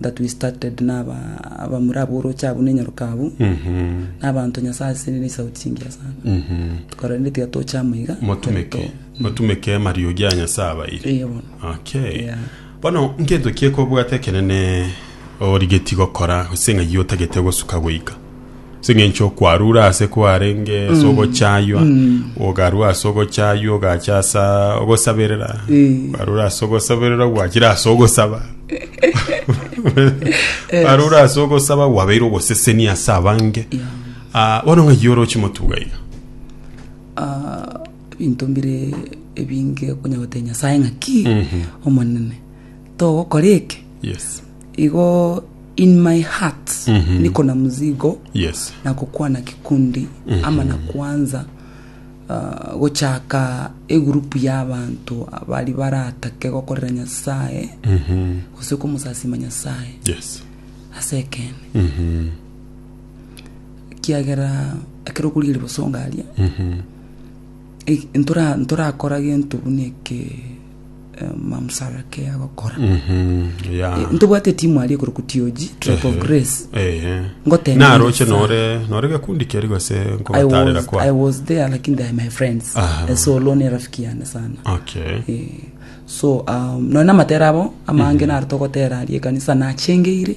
that we started na aba abamura aboroche abwo ne nyaroka abwo na abanto nyasaye ase ne sauti chingiya sana tukarorende tiga toche amo iga motumeke motumeke mario gia nyasaye abaire Eye bono okay Yeah. bono nkento kiekobwate ekenene origeti gokora gose ng'ai otagete gosuka goika Sing'encho kwarure ase kwarenge ase ogochaywa, ogarua ase ogochaywa, ogacha ase ogosaberera, Eh. kwarure ase ogosaberera, gwachire ase ogosaba. Kwarure ase ogosaba, gwabeire ogosesenia ase abange. Ah, bono ng'ai ore ochimotuga iga? Ah, ebinto mbire ebinge okonya goteba nyasae ng'aki omonene togokora eke Yes. Igo in my heart niko na muzigo Yes. na gokwana kikundi ama na kwanza ah, gochaka egurupu y'abanto abari baratake gokorera nyasaye gose komosasima nyasaye Yes. ase ekene kiagera ekero okorigia riboso ngaria e- ntora- ntorakora gento buna eke mamsara ke agokora Mhm, ya. Eh, ntobwate timu aria ekorokwa TOG Tribe of Grace Ehe. Ngotenena naroche sana. nore nore gekundi keri gose I nkogotarera was, kwa I was there lakini they are my friends Aha. Eh, so lone rafiki yane sana okay Eh, so um, none amatera abo amange naro togotera aria ekanisa nachengeire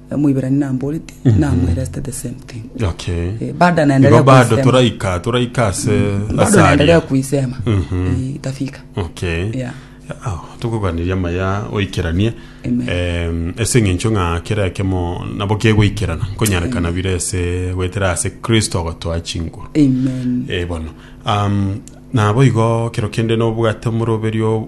Omoiberania namboreti namwereste the same thing Okay. Eh, bado Igo anaendelea bado kuisema toraika toraika ase bado ase anaendelea aria. kuisema Mhm. Eh, itafika Okay. Yeah. Ah, tokogania maya oikeranie Amen. Em, ase eng'encho ng'a kera ekemo nabo kegoikerana konyarekana bire ase goetera ase kristo ogotoa chinguru amen Eh, bono um, nabo igo kero kende nobwate omoroberio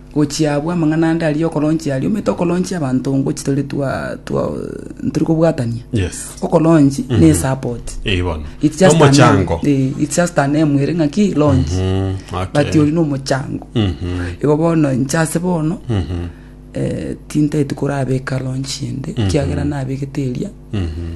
Gochia abwo amang'ana ande aria okoronchia aria, omanyete okoronchia abanto ngochia tore twa twa tori kobwatania. Yes. Okoronchi na esapoti. Eh, bono. It's just an Omochango. em- eh, it's just an em ere ng'aki launch. Mm, okay. But oyu nomochango. Mhm. Igo bono inche ase bono Mhm. eh, tintaeti korabeka launch ende kiagera nabegete eria Mhm.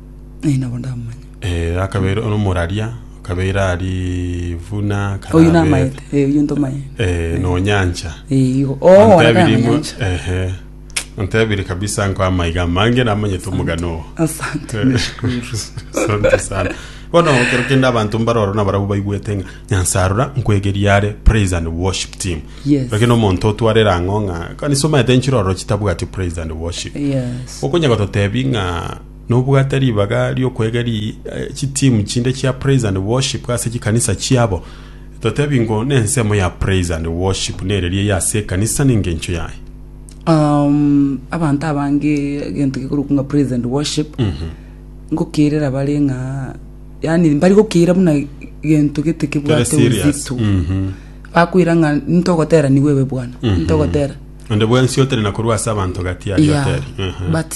Eh, nabo ndamomanya. Eh, akabeire omoraria akabeire ari vuna kana Oyio abete. namaete. Eh, oyio ntomaete. eh, nonyancha Eh, igo. Oh, Antebiri wanakana mwa- nyancha. ehe antebiri kabisa nko amaiga mange namanyete omogano oo Asante. Eh, nashukuru. asante sana bono kero kende abanto mbaroro nabarabu baigwete ng'a nyansarora nkwegeria are praise and worship team Yes. lakini omonto otwarera ang'o ng'a kanisa omaete nchiroro chitabwati praise and worship Yes. okonya gototebi ng'a nobwate ribaga ri'okwegeria chitimu chinde chia Praise and Worship ase chikanisa chiabo, totebi ngo nensemo ya Praise and Worship nereria eye ase ekanisa nengencho yaye. Um, abanto abange egento gekorokwa ng'a praise and worship ngokeirera bare ng'a yani mbari gokeira buna gento gete Kere kebwate serious. uzito Mhm. bakwira ng'a ntogotera nigo ebe bwana ntogotera Onde bwensi otere na korwa ase abanto gati ari Yeah, oteri. Ehe. but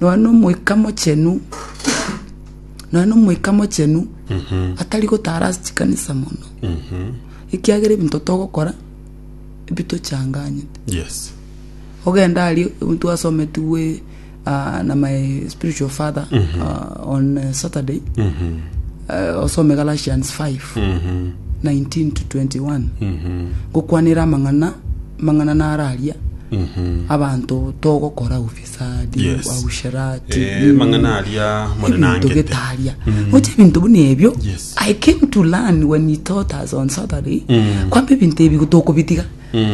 nonya na omoika mochenu, nonya na omoika mochenu atari gotara ase chikanisa mono, ekiagera ebinto togokora ebitochanganyete. Yes. ogenda aria omonto asometigwe ah, na my spiritual father ah, on eh, saturday eh, osome galatians 5 19 to 21 gokwanera amang'ana amang'ana nararia abanto togokora obisa sadi Yes. ausherati Eh, nini, mang'ana aria mone ebinto nangete. getaria gocha ebinto buna ebio Yes. i came to learn when he taught us on saturday kwamba ebinto ebi tokobitiga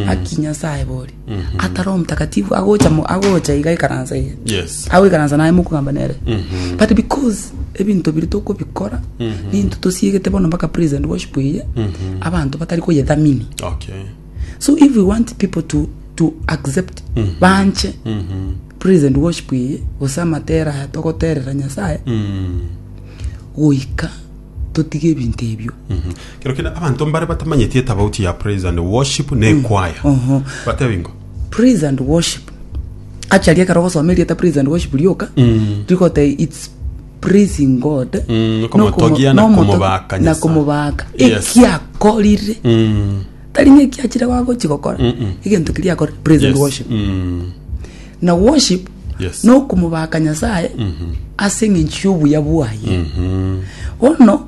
aki nyasaye bori atari omutakatifu agocha mo- agocha iga ikaransa iga Yes. agoikaransa naye mokogamba nere but because ebinto biri tokobikora ninto tosiegete bono mpaka praise and worship eye abanto batari koyethamini Okay. so if we want people to, to accept mm -hmm. banche mm -hmm. praise and worship iye gose amatera aya togoterera nyasaye mm -hmm. goika totige ebinto ebio mm -hmm. kero kina abanto mbare batamanyeti etabauti ya praise and worship ne mm. kwaya uh -huh. batebingo praise and worship achari ekero gosoma erieta praise and worship rioka mm. rigote it's praising God Mm, na okomo- okomotogia na na omoto- komobaka na Nyasaye. komobaka Yes. ekiakorire Mm, tari ng'ekiachire wagochi gokora Mm-mm. egento kiria akore praise and yes. worship Mm, na worship Yes. na okomobaka nyasaye ase eng'encho y'obuya bwaye mhm. bono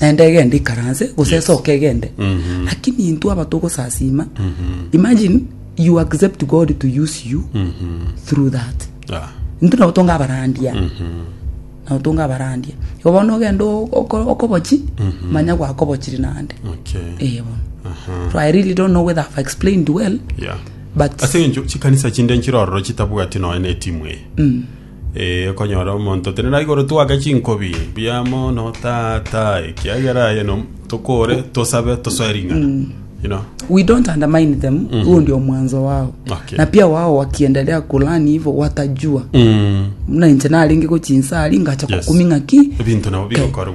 Enda egende ikaranse gose Yes. esoke egende Mhm. lakini intwe aba togosasima Mhm. imagine you accept god to use you Mhm. through that Ah. intwe nabo tonga abarandia Mhm. nabo tonga abarandia igo bono ogenda o- oko- okobochi Mhm. manya gwakobochiri nande Okay. Eh, bono Aha. so i really don't know whether i've explained well Yeah. but ase encho chikanisa chinde nchirororo chitabwati noe na etimu eye Mm. Ee, okonyora omonto tenena igoro twake chinkobi buya mono tata ekiagera aye no tokore tosabe tosoe ring'ana you know we don't undermine them huo ndio mwanzo wao Okay. na pia wao wakiendelea kulani hivyo watajua mm. muna inche narenge gochinsa ari ngacha Yes. kukuming'a ki ebinto nabo bigokorwa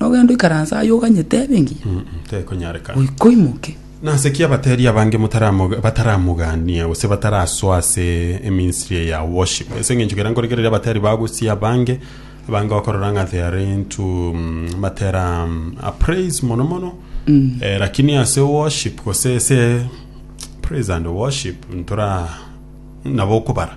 nogende oikaranse aye oganyete ebe engiya, Mm, mm, tekonyarekana. goika oimoke. Nase ki abateeri abange motaramoga- bataramogania gose batarasoa ase eministry eye ya worship? Ase eng'encho kera nkorekereria abateeri ba gusii abange, abange okorora ng'a they are into mm, batera mm, a praise mono mono, Eh, lakini ase worship gose ase praise and worship ntora nabo okobara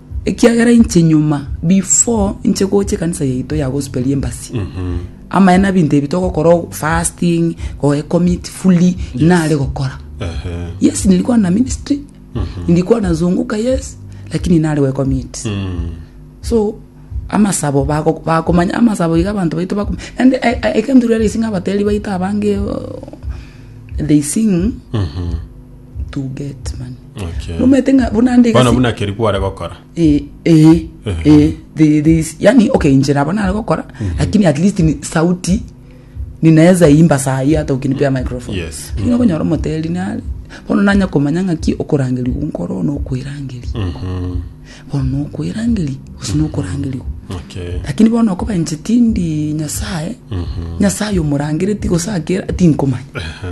Ekiagera inche nyuma before inche gocha ekanisa yaito ya gospel ya embasi amaene abinto ebi togokora o- fasting goecommit fully nare gokora Ehe. yes nilikuwa na ministry nilikuwa nazunguka yes lakini nare goecommit Mm. so amasabo bago- bakomanya amasabo iga abanto baito bakom- and I- I- I came to realize ng'a abateri baito abange uh, they sing Mhm. to get money Okay. nomete ng'a buna nde Bono egasi- buna keri kware gokora. Eh, eh, eh, the- this- yani okay injira abo nare gokora lakini at least ni sauti ninaweza imba saa hii hata ukinipea microphone Yes. lakini okonyora omoteri nare bono nanya komanya ng'aki okorangeri gunkoro nokwirangeri Mhm. bono nokwirangeri gose nokorangeri gu Okay. lakini bono okobenche tindi nyasaye nyasaye omorangereti gose akera tinkomanya Aha.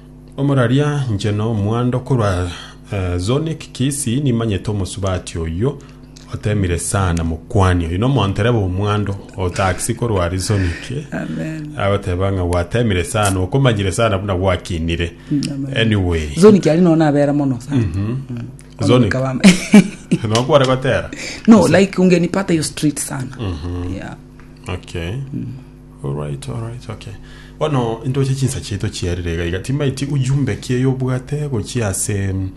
Omoraria, inche nomwando korwa Zonic Kisii nimanyete omosubati oyio otemire sana mokwani oyo nomonto tereba omwando otaxi korwa ari Zonic Amen. agoteba ng'a gwatemire sana okomanyire sana buna gwakinire anyway Zoni kiari no nabera mono sa. Mm. Zoni. Onoka wame. nokware gotera No, like ungenipata hiyo street sana. Yeah. okay Alright alright ok. Bono intoche chinsa chiaito chiarire iga iga timbaeti ujumbe ki eyobwate gochia ase mm,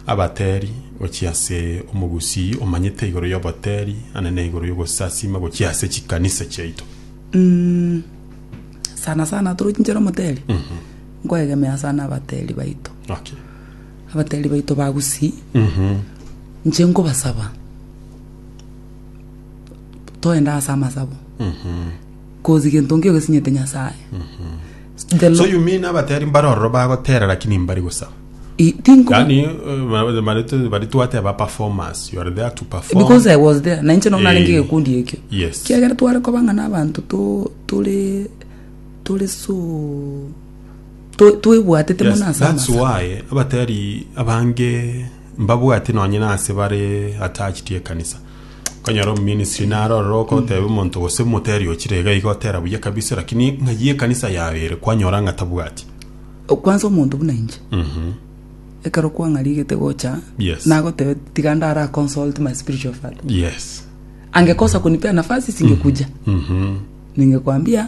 abateri gochia ase omogusii omanyete igoro y'oboteri ande na igoro y'ogosasima gochia ase chikanisa chiaito. Mm, sana sana torochinchera omoteri nkoegemea sana abateri baito Okay. abateri baito ba gusii inche nkobasaba toende ase amasabo cause gento nkio gesinyete nyasaye The so Lord- you mean abateri mbare ororo bagotera lakini mbari gosaba I- think- yani eh, bari- bari- bari twateba performance you are there to perform because i was there na inche nona Eh. renge gekundi ekio Yes. kiagera tware koba ng'a n'abanto to- tore tore so to- twebwatete yes, mono ase that's amasabo why abateri abange Mbabwati nonye nase bare attached ekanisa. Okonyora omuministry naro ororo okoteba omonto gose moteri ochire iga iga otera buya kabisa lakini ng'ai ekanisa yaye ere kwanyora ng'a tabwati. Kwanza omonto buna inche Mhm. ekero kwang'arigete gocha Yes. nagotebe tiga ndara consult my spiritual father Yes. angekosa kunipea nafasi singekuja Mhm. ningekwambia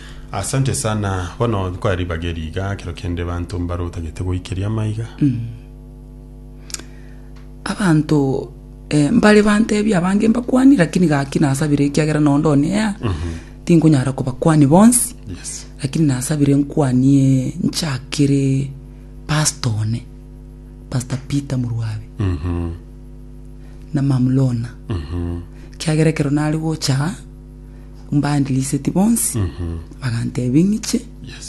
Asante sana bono nkoya ribaga eri iga ekero kende banto mbare otagete goikeria amaiga abanto eh, mbare bantebia abange mbakwani lakini gaki nasabire ekiagera nao ndone ya tinkonyara kobakwani bonsi yes lakini nasabire nkwanie nchakere pasta one pasta peter murwabe Mhm, na mamlona mhm. kiagera ekero nare gocha Mbandiriseti bonsi bagantebia ng'iche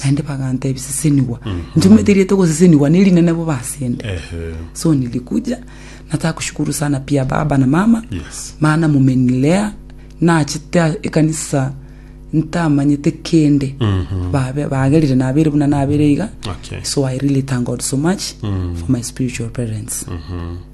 naende bagantebia sesenigwa inche omanyete erieta ogosesenigwa nerine nabo basende Ehe. so nilikuja nataka kushukuru sana pia baba na mama Yes. maana mumenilea nachete ekanisa ntamanyete kende babe bagerire nabere buna nabere iga Okay. so i really thank god so much for my spiritual parents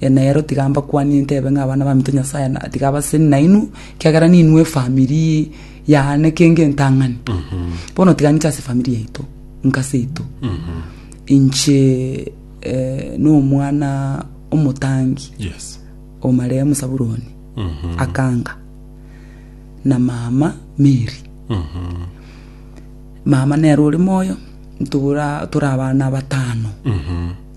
Enero tiga mbakwanie ntebe ng'a abana baminto Nyasae na tiga abaseni nainwe, ekiagera ninwe efamiri yane kenge entang'ani. Bono tiga ninche ase efamiri yaito, nka seito. Inche eh, nomwana omotangi Yes. o marehemu Saburoni Akanga na mama Mary. Mama nere ore moyo, ntobora tore abana batano.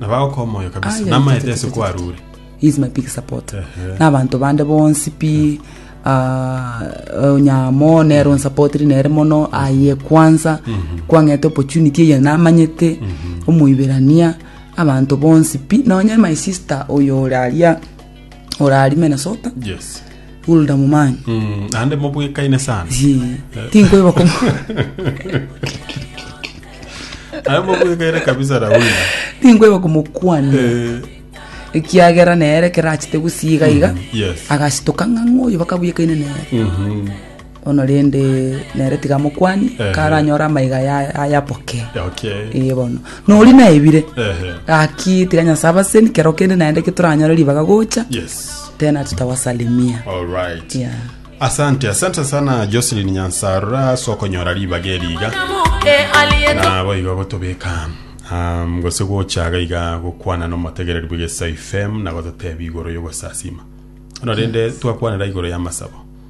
Nabagoka omoyo kabisa, Aya, namaete tete, ase tete, kwarure. He is my big support Ehe. n'abanto bande bonsi pi ah, onyamo nero nsapotiri nere mono aye kwanza kwang'ete opportunity eye namanyete omoiberania abanto bonsi pi nonye my sister oyo ore aria orari Minnesota yes Hulda Mumanyi mm, ande mobwekaine sana Zi, tinkoiba komo ande mobwekaine kabisa rauli tinkoiba komokwania Eh, ekiagera nere kerachete gusiga iga yes agashitoka ng'a ng'oyo bakabuyekaine nere mhm. Bono rende nere tiga mokwanie, Ehe. karanyore amaiga aya- ayaboke. Okay. Ee bono. Nori naebire. Ehe. Gaki tiga Nyasae abaseni kero kende naende ki toranyore ribaga gocha. Yes. Tena tutawasalimia. All right. Yeah. Asante, asante sana Jocelyn Nyansarura sokonyora ribaga eriga. na boigo gotobeka um, gose gochaga iga gokwana nomotegereri bwegesa fm na gototebi igoro yogosasima ono rende twakwanera igoro y'amasabo